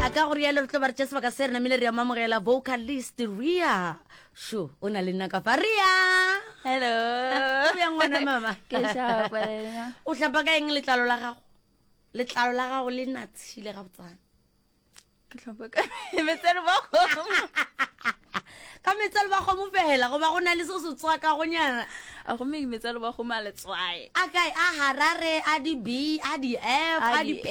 a ka go rialo re tlo ba re tša sebaka se re namile re ya mamogela vocalist ria sho o na le nna ka fa ria hello o bjang ngwana mama Ke šapa wena. o hlapa ka eng letlalo la gago letlalo la gago le natshile ga botsana ke tlhopa ka metsere ba kgomo Ga metsalo ba kgomo fela goba go na le se se tswakagonyana? A gomme ke metsalo ba kgomo a letswae. A kae? A Harare, a di B, a di F, a di P,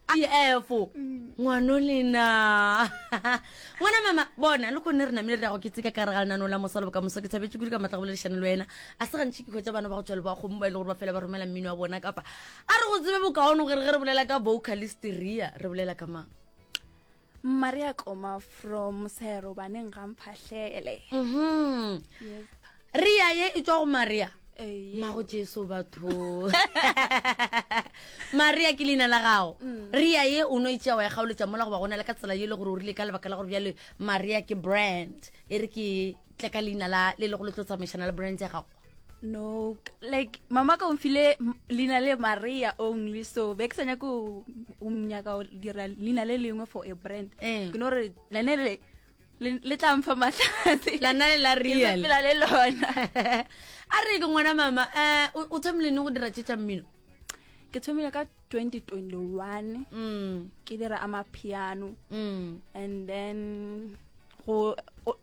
a di F. Mm. Ngwano lena. Ngwana mama, bona, le kone re namile re ya go ketseka ka re ga lenano la mosalo boka moso ke thabetse kudu ka matla go boledišane le wena. A se gantši ke hwetsa bana ba go tšwale ba kgomo ba e le gore ba fela ba romela mmino wa bona kapa a re go tsebe bokaone gore ge re bolela ka vocalist rea re bolela ka mang. mma re a tloma from sero baneng ga mphahlele Mhm. Yep. ria ye e tswa go maria Ee. mago jesu batho maria ke leina la gago Mm. ria ye o no itsea wa e kgaoletsa mola goba gona le ka tsela ye e le gore o rile ka lebaka la gore bjale maria ke brand e re ke tle ka leina la le le go le tlo tsamaišana le brand ya gago no like mama ka o mfile leina le maria only so be ke sa nyako o nyaka go dira leina le lengwe for a brand eh. ke no re lane le le tla mfa matlhatse lana le la real pela le lona a re ke ngwana mama um o thomile ne go dira tše tša mmino ke thomile ka 2021 mm. ke dira amapiano mm. and then go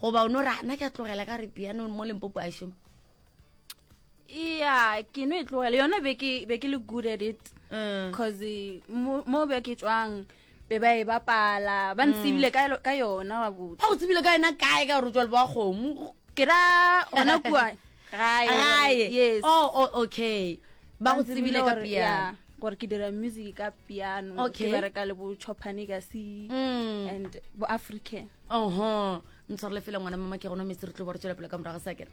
goba o no ra na ke a tlogela ka re piano mo limpopo a šoma ya ke no e tlogela yona be ke be ke le good at it because eh. eh, mo be ke tswang be ba e bapala ba ntsebile mm. ka yona wa botsa ga o tsebile ka yona kae ka gore o tswa le ba kgomo ke ra gona kua gae gae yes oh, oh okay ba go tsebile ka piano gore ke dira music ka piano okay. ke bereka le bo chopane ka se mm. and bo african oho ntshwarele fela ngwana mama ke gona metse re tlo ba re tswela pele ka morago sa kere